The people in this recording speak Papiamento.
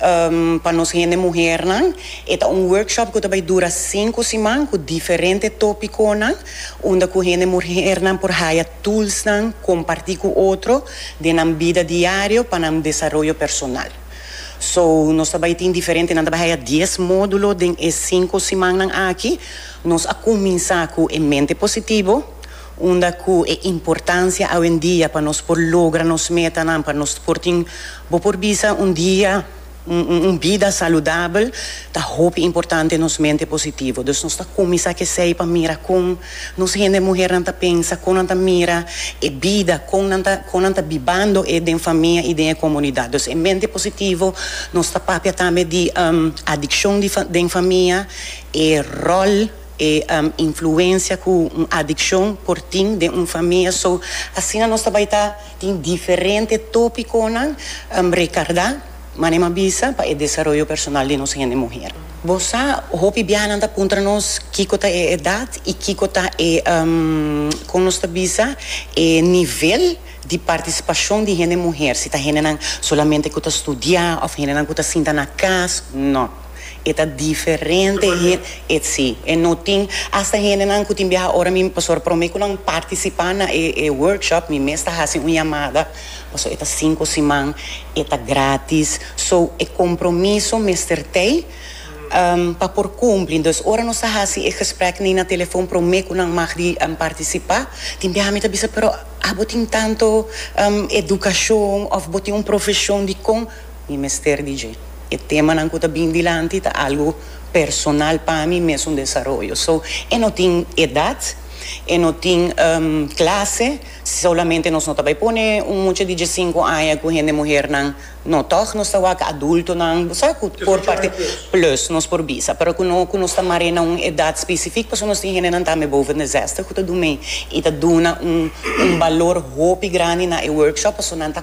Pa nos hende muhernan e ta un workshop ku ta bai dura sinku siman ku diferente topikonan unda ku hende muhernan por haya tulsnan kompartí ku otro den nan bida diario pa nan desaroyo personal. So nos ta bai tin diferente nan ta bai haya dies módulo den e sinku simannan aki. Nos a kuminsá ku e mente positivo, Unda cu e importancia awendia pa nos por logra nos metanan, pa nos por tin, bo por bisa un dia, un bida saludabel, ta hopi importante nos mente positivo. Dus nos ta cuminsa c'esey pa mira con nos hende muhernan ta pensa, con nan ta mira e bida, con nan ta, con nan ta bibando e den famia y den e comunidad. Dus e mente positivo nos ta papia tambe di adiccion di den famia, e rol. E influencia cu un adiccion por tin den un famia. So, asina nos ta bai ta tin diferente topiconan recarda, manera m'a bisa, pa e desaroyo personal di nos hende muher. Bo sa, hopi biahanan ta puntra nos kico ta e edad y kico ta e, con nos ta bisa, e nivel di participacion di hende muher, si ta hendenan solamente cu ta studia of hendenan cu ta sinta na cas, no. E ta diferente hende, e si, e no tin, hasta hendenan ku tin biaha ora mi pasobra promé ku nan partisipá na e e workshop mi mes ta hasi un yamada, pasobra e ta sinku siman, e ta grátis, so e kompromiso mester tei pa por kumpli, entonces ora nos ta hasi e gesprek nei na telefòn promé ku nan mag di partisipá, tin biaha mi ta bisa, pero abo tin tantu edukashon òf bo tin un profeshon dikon? Mi mester di dje. E temanan ku ta bin dilanti ta algu personal pa mi, mi es un desaroyo. So, e no tin edat, e no tin klase, solamente nos no ta bai pone un mucha di diesinku aña ku hende muhernan. No, tòg nos ta wak adultonan, bo sa ku por parti plus nos por bisa, pero ku no ku nos ta mar'é na un edat spesifik pasobra nos tin hendenan tambe boven de zèstig ku ta durmí i ta duna un balor hopi grandi na e workshop pasobra nan ta.